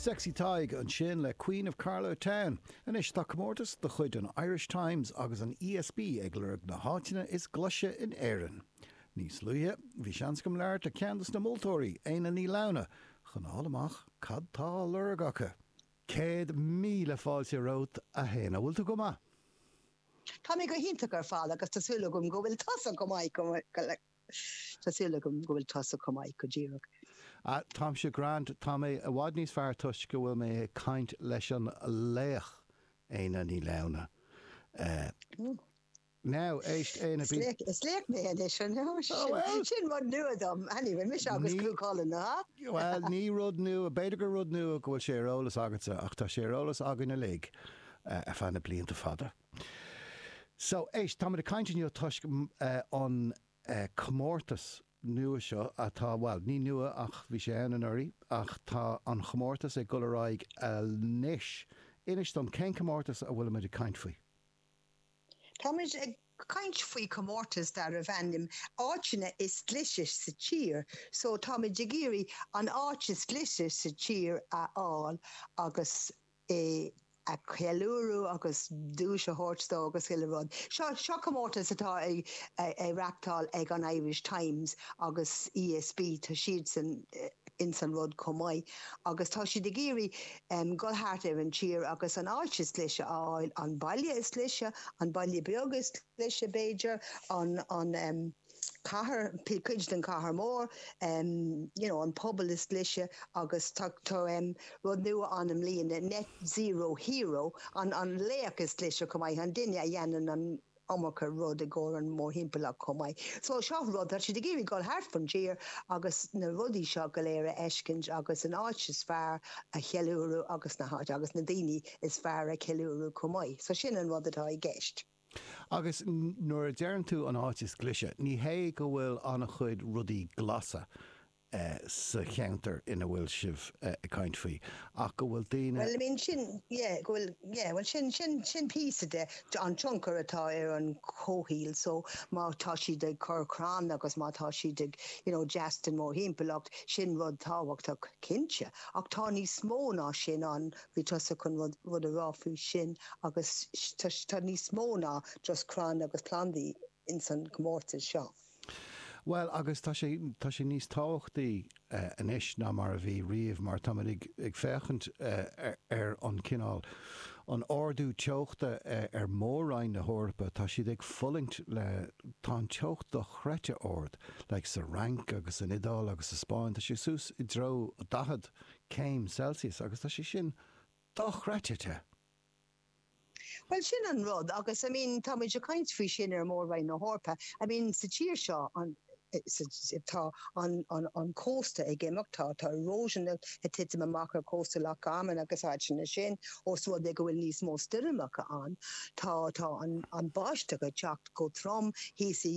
Sexy Tadhg ansin le Queen of Carlow Town. Anois tá comórtas de chuid an Irish Times agus an ESB ag lorg na háiteanna is glaise in Éirinn. Níos luaithe, bhí seans agam labhairt le ceann dos na moltóirí, Éanna Ní Lamhna, chun a fháil amach cad tá á lorg acu. Céad míle fáilte romhat, a hÉanna. Bhfuil tú go maith? Tá mé go hiontach ar fad agus tá súil agam go bhfuil tusa go maith, go maith. Tá súil agam go bhfuil tusa chomh maith go díreach. Ah, táimse grand, tá mé i bhfad níos fearr toisc go bhfuil mé ag caint leis an laoch, Éanna Ní Lamhna. Eh. Now, éist, Éanna, bhí. Is laoch mé anois, an ea? Sin, sin rud nua dom. Anyway, mise agus Cú Chulainn, nó hea? Bhuel, ní rud nua, b'fhéidir gur rud nua go bhfuil sé ar eolas agatsa, ach tá sé ar eolas againn uilig ar feadh na blianta fada. So, éist, táimid ag caint inniu toisc an comórtas nua seo atá, bhuel, ní nua ach bhí sé ann anuraidh ach tá an chomórtas ag dul ar aghaidh anois. Inis dom, cén comórtas a bhfuilimid ag caint faoi? Táimid ag caint faoi chomórtas darbh ainm 'Áiteanna is Glaise sa Tír'. So, táimid ag iarraidh an áit is glaise sa tír a fháil agus é a cheiliúradh agus duais a thabhairt dó agus chuile rud. Seo seo comórtas atá a a reachtáil ag an Irish Times agus ESB, tá siadsan ins an rud chomh maith agus tá siad ag iarraidh em dhul thart ar an tír agus an áit is glaise a fháil, an baile is glaise, an baile beag is glaise b'fhéidir, an an em. cathair, cuid den chathair mór, you know an pobal is glaise agus tá rud nua ann i mbliana, net zero hero, an laoch is glaise chomh maith, an duine a dhéanann an iomarca rud i gcomhair an mórthimpeallacht chomh maith. So seo rud, tá siad ag iarraidh dul thart fán tír agus na rudaí seo go léir a fheiscint agus an áit is fearr a cheiliúradh agus na háit agus na daoine is fearr a cheiliúradh chomh maith. So sin an rud atá i gceist. Agus nuair a deireann tú an áit is glaise, ní hé go bhfuil an-chuid rudaí glasa sa cheantar ina bhfuil sibh ag caint faoi, ach go bhfuil daoine. Bhuel, I mean, sin, yeah, go bhfuil, yeah, bhuel, sin, sin, sin píosa de, an tionchar atá ar an chomhshaoil, so, má tá siad ag cur crann agus má tá siad ag, you know, deas don mórthimpeallacht, sin rud tábhachtach, cinnte, ach tá níos mó ná sin ann, Bhí tusa chun rud a rá faoi sin agus tá níos mó ná just crainn agus plandaí ins an chomórtas seo. Bhuel, agus tá sé, tá sé níos tábhachtaí anois ná mar a bhí riamh mar táimid ag féachaint ar an cineál, an ardú teochta ar Mhór-roinn na hEorpa, tá siad ag fulaingt le, tá an teocht dochreidte ard, like sa Fhrainc agus san Iodáil agus sa Spáinn, tá sé suas i dtreo 40 céim Celsius, agus tá sé sin dochreidte te! Bhuel, sin an rud, agus I mean, táimid ag caint faoi sin ar Mhór-Roinn na hEorpa, I mean, sa tír seo, an, tá an, an, an cósta ag imeacht, tá, tá erosion ag titim amach ar chósta Loch Garman agus áiteanna sin, ós rud é go bhfuil níos mó stoirmeacha ann, tá, tá an, an bháisteach ag teacht chomh trom thíos i,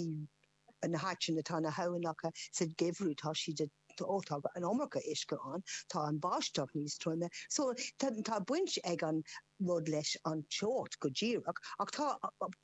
na háiteanna tá na haibhneacha sa geimhreadh tá siad ó tá an iomarca uisce ann tá an bháisteach níos troime so tá tá baint ag an rud leis an teocht go díreach ach tá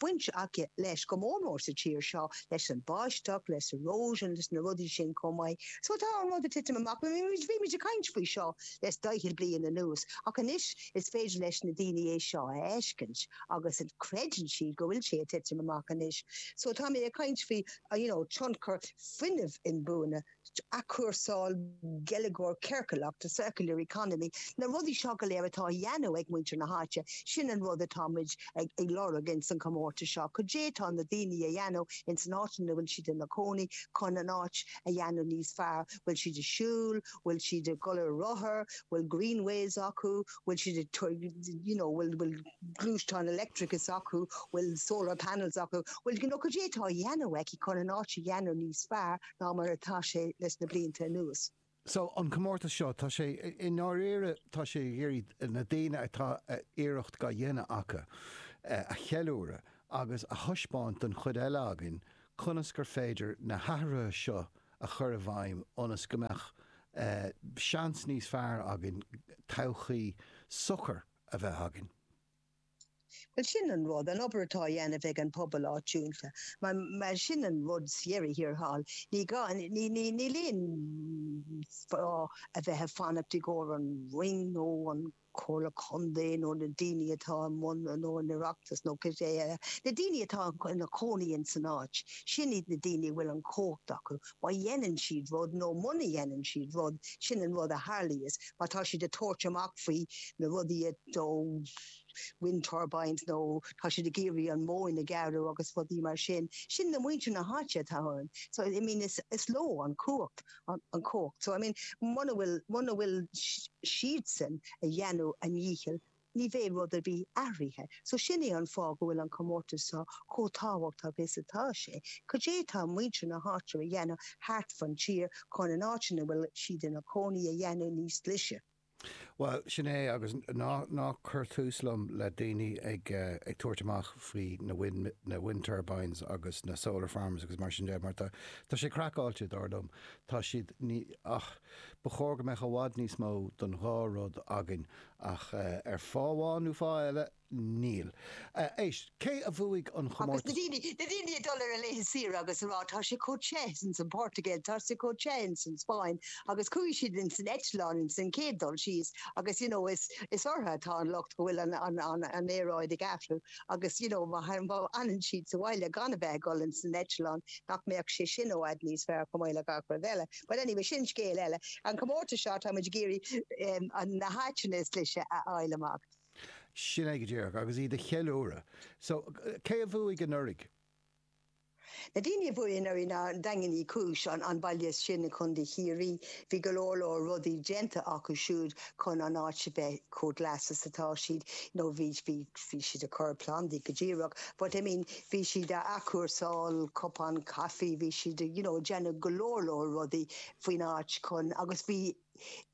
baint aici leis go mór mór sa tír seo leis an bháisteach leis erosion leis na rudaí sin chomh maith so tá an rud a titim amach bhí muid a caint faoi seo le daichead bliain anuas ach anois Is féidir leis na daoine é seo a fheiscint agus creideann siad go bhfuil sé ag titim amach anois. So táimid ag caint faoi, you know, tionchar fuinnimh inbhuaine, athchúrsáil, geilleagar ciorcalach, the circular economy, na rudaí seo go léir atá a dhéanamh ag muintir na háite, sin an rud atáimid ag lorg ins an chomórtas seo, cad é tá na daoine a dhéanamh ins an áit ina bhfuil siad ina cónaí chun an áit a dhéanamh níos fearr, bhfuil siad ag siúl, bhfuil siad ag dul ar rothair, bhfuil greenways acu, bhfuil siad ag you know bhfuil bhfuil gluaisteáin electric acu, bhfuil solar panels acu, bhfuil you know cad é atá a dhéanamh acu chun an áit a dhéanamh níos fearr ná mar atá sé leis na blianta anuas. So an comórtas seo, tá sé i ndáiríre tá sé ag iarraidh na daoine atá iarracht á dhéanamh acu a cheiliúradh agus a thaispeáint don chuid eile againn conas gur féidir na hathruithe seo a chur i bhfeidhm ionas go mbeadh seans níos fearr againn todhchaí socair a bheith againn. Bhuel, sin an rud, an obair atá á dhéanamh ag an pobal áitiúil. Mar sin an rud ar deireadh thiar thall. Ní gá, níl aon fáth a bheith ag fanacht i gcomhair an Roinn nó an. Comhairle Contae nó na daoine atá i mbun nó an Oireachtas nó cibé ar bith, na daoine atá ina gcónaí ins an áit, sin iad na daoine a bhfuil an chumhacht acu. Má dhéanann siad rud nó muna dhéanann siad rud, sin an rud a tharlaíos. Má tá siad ag tabhairt amach faoi na rudaí a, nó wind turbines nó tá siad ag iarraidh an mhóin a ghearradh agus rudaí mar sin, sin na muintir na háite atá ann. So, I mean, is leo an chumhacht. an chumhacht so, I mean, muna bhfuil, muna bhfuil siadsan a dheanamh a ndícheall, ní bhéidh rud ar bith athraithe. So sin é an fáth go bhfuil an comórtas so chomh tábhachtach is atá sé. Cad é tá muintir na háite a dheanamh thart fan tír chun an áit ina bhfuil siad ina gcónaí a dheanamh níos glaise? Bhuel, sin é, agus ná cuir tús liom le daoine ag tabhairt amach faoi na wind turbines agus na solar farms agus mar sin de, mar tá sé craiceáilte, dar liom. Tá siad, ní, ach ba chóir go mbeadh i bhfad níos mó den dá rud againn ach ar fáth amháin nó fáth eile, Níl. Is cé a bhuaigh an... Na daoine ag dul ar a laethe saoire agus a rá, Tá sé chomh te ins an Portugail, tá sé chomh te ins an Spáinn, agus chuaigh siad ins an eitleán ins an chéad dul síos agus, you know, is ortha atá an locht go bhfuil an aeráid ag athrú agus, you know, má fhanann siad sa bhaile gan a bheith ag dul ins an eitleán, nach mbeadh sé sin i bhfad níos fearr chomh maith le gach rud eile. But anyway, sin scéal eile. An comórtas seo, tá muid ag iarraidh na háiteanna is glaise a fháil amach. Sin é go díreach, agus iad a cheiliúradh. So, cé a bhuaigh anuraidh? Na daoine a bhuaigh anuraidh ná Daingean Uí Chúis, an baile sin i gContae Chiarraí. Bhí go leor leor rudaí déanta acu siúd chun an áit a bheith chomh glas is atá siad. You know, bhí, bhí, bhí siad ag cur plandaí go díreach, but I mean, bhí siad a athchúrsáil cupán caifí, bhí siad a, you know, ag déanamh go leor leor rudaí faoin áit chun, agus bhí,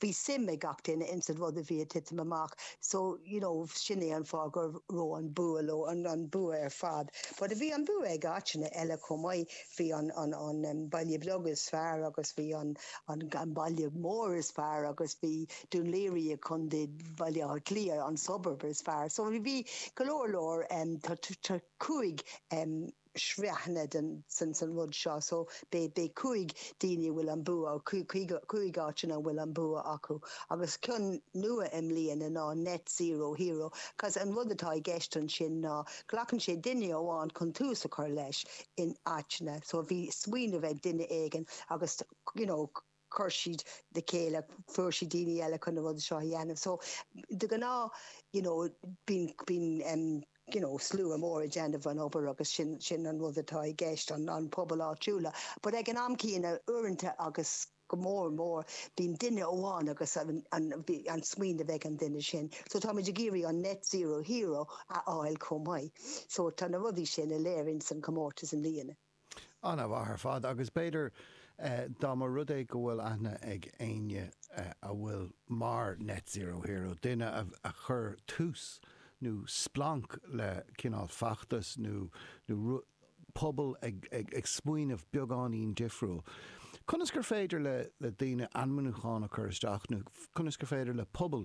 bhí suim ag gach duine ins an rud a bhí a' titim amach so you know sin é an fáth gur ro an bua leo, an an bua ar fad but bhí an bua ag áiteanna eile chomh maith, bhí an an an em Baile Beag is fearr agus bhí an an an Baile Mór is fearr agus bhí Dún Laoghaire i Contae Bhaile Átha Cliath an suburb is fearr so bhí go leor leor em tá cúig em sraitheanna den rud seo so beidh cúig daoine a bhfuil an bua, cúig áiteanna a bhfuil an bua acu agus ceann nua i mbliana ná Net Zero Hero cause an rud atá i gceist ansin ná glacann sé duine amháin chun tús a chur leis in áiteanna so bhí smaoineamh ag duine éigin agus you know chuir siad le chéile, fuair siad daoine eile chun na rudaí seo a dhéanamh. So, de ghnáth, you know, bíonn, bíonn em, you know, slua mór ag déanamh an obair agus sin, sin an rud atá i gceist, an, an pobal áitiúla. But ag an am céanna, uaireanta agus go mór mór, bíonn duine amháin agus an, an smaoineamh ag an duine sin. So táimid ag iarraidh an net zero hero a fháil chomh maith. So tá na rudaí sin uilig ann san comórtas i mbliana. Ana-mhaith ar fad, agus b'fhéidir dá mba rud é go bhfuil aithne ag éinne a bhfuil mar Net Zero Hero, duine a chuir tús nó splanc le cineál feachtas nó pobail ag smaoineamh beagáinín difriúil, conas gur féidir le daoine ainmniúchán a chur isteach nó conas gur féidir le pobal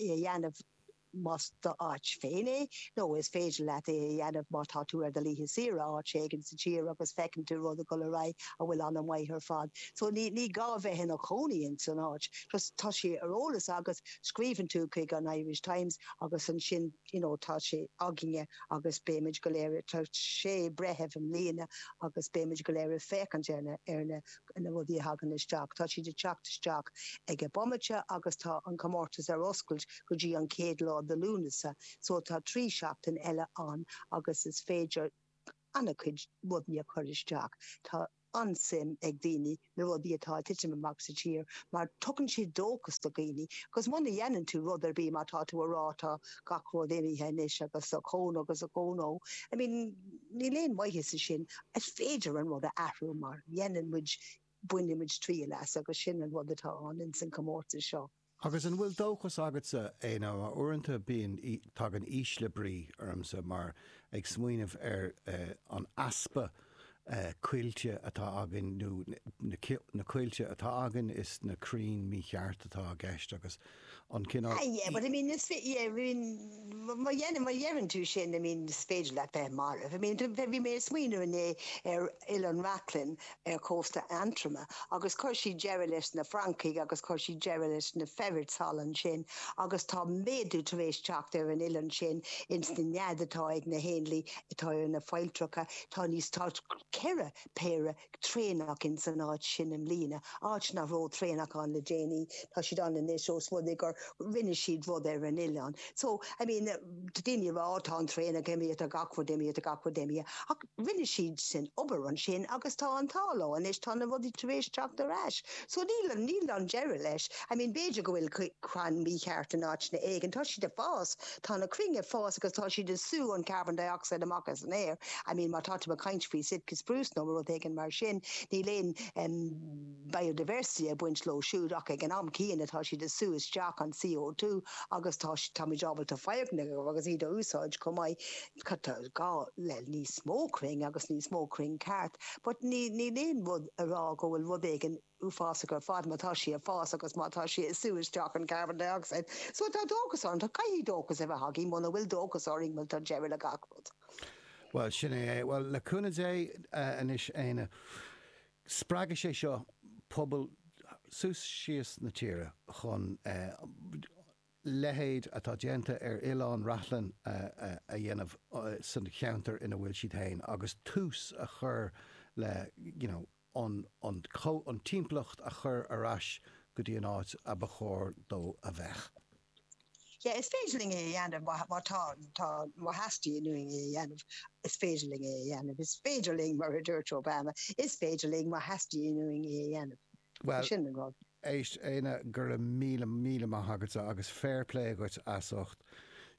é a dhéanamh más do áit féin é, nó is féidir leat é a dhéanamh má tá tú ar do laethe saoire áit éigin sa tír agus feiceann tú rud ag dul ar aghaidh a bhfuil an-mhaith ar fad. So ní gá bheith ina chónaí ins an áit, just tá sé ar eolas agat, scríobhann tú chuig an Irish Times agus ansin you know tá sé againne agus béimid go léir, tá sé breitheamh i mbliana agus béimid go léir ag féachaint ar na na rudaí a thagann isteach, tá siad ag teacht isteach ag an bpointe agus tá an comórtas ar oscailt go dtí an chéad lá de Lúnasa so tá trí sheachtain eile ann agus is féidir ana-chuid rudaí a chur isteach. Tá an-suim ag daoine na rudaí atá ag titim amach sa tír mar tugann siad dóchas do dhaoine agus muna dhéanann tú rud ar bith má tá tú a rá tá gach rud imithe anois agus ochón ó agus ochón ó I mean Níl aon mhaitheas ansin. Is féidir an rud a athrú má dhéanann muid, bainfidh muid triail as agus sin an rud atá ann ins an comórtas seo. Agus an bhfuil dóchas agatsa Éanna uaireanta bíonn, tagann ísle brí ormsa mar ag smaoineamh ar an easpa coillte atá againn nó na coillte atá againn is iad na crainn mícheart atá i gceist agus an cineál. Ah yeah, but I mean, is yeah, I mean, má deireann, má deireann tú sin, I mean, is féidir leat bheith marbh. I mean, bhí mé smaoineamh inné ar Oileán Reachlainn ar chósta Aontroma agus chuir siad deireadh leis na francaigh agus chuir siad deireadh leis na feiréid thall ansin agus tá méadú tar éis teacht ar an oileán sin ins na nead atá ag na héanlaith atá ar na failltreacha, tá níos, tá ceithre péire traonach ins an áit sin i mbliana, áit nach rabh traonach ann le déanaí, tá siad ann anois ós rud é gur rinne siad rud ar an oileán. So, I mean, tá daoine a rá, Ó, tá an traonach imithe, tá gach rud imithe, tá gach rud imithe, ach rinne siad sin obair ansin agus tá an t-ádh leo anois, tá na rudaí tar éis teacht ar ais. So, níl, níl an deireadh leis. I mean, b'fhéidir go bhfuil crann mícheart in áiteanna éigin, tá siad ag fás, Tá na crainn ag fás agus tá siad ag sú an carbon dioxide amach as an aer. I mean, má tá tú ag caint faoi Sitka spruce nó rud éigin mar sin, níl aon, em, biodiversity ag baint leo siúd ach ag an am céanna tá siad ag sú isteach an CO2 agus tá, táimid ábalta foirgnimh a dhéanamh agus iad a úsáid chomh maith. Tá gá le níos mó crainn agus níos mó crainn ceart but níl, níl aon rud a rá go bhfuil rud éigin, uafásacha ar fad, má tá sí ag fás agus má tá sí ag sú isteach an carbon dioxide. So tá dóchas ann, tá, caithfidh dóchas a bheith againn, muna bhfuil dóchas againn, bhuel, tá deireadh le gach rud. Bhuel, sin é é. Bhuel, le cúnamh Dé, anois, Éanna, spreagfaidh sé seo pobail suas síos na tíre chun leithéid atá déanta ar Oileán Reachlainn a dhéanamh sa cheantar ina bhfuil siad fhéin agus tús a chur le, you know, an an timpeallacht a chur ar ais go dtí an áit a ba chóir dó a bheith. Sea, is féidir linn é a dhéanamh má tá, tá, má theastaíonn uainn é a dhéanamh, is féidir linn é a dhéanamh, is féidir linn, mar a dúirt Obama, is féidir linn má theastaíonn uainn é a dhéanamh. Sin an rud. Bhuel, éist, Éanna, go raibh míle, míle maith agatsa agus fair play dhuit as ucht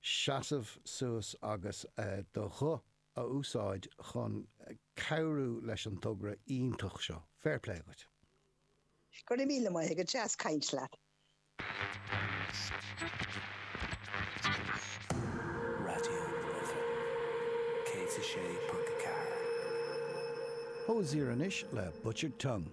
seasamh suas agus do ghuth a úsáid chun cabhrú leis an togra iontach seo. Fair play dhuit. Go raibh míle maith agat, deas caint leat. Raidió na Life 106.4. Hozier anois le Butchered Tongue.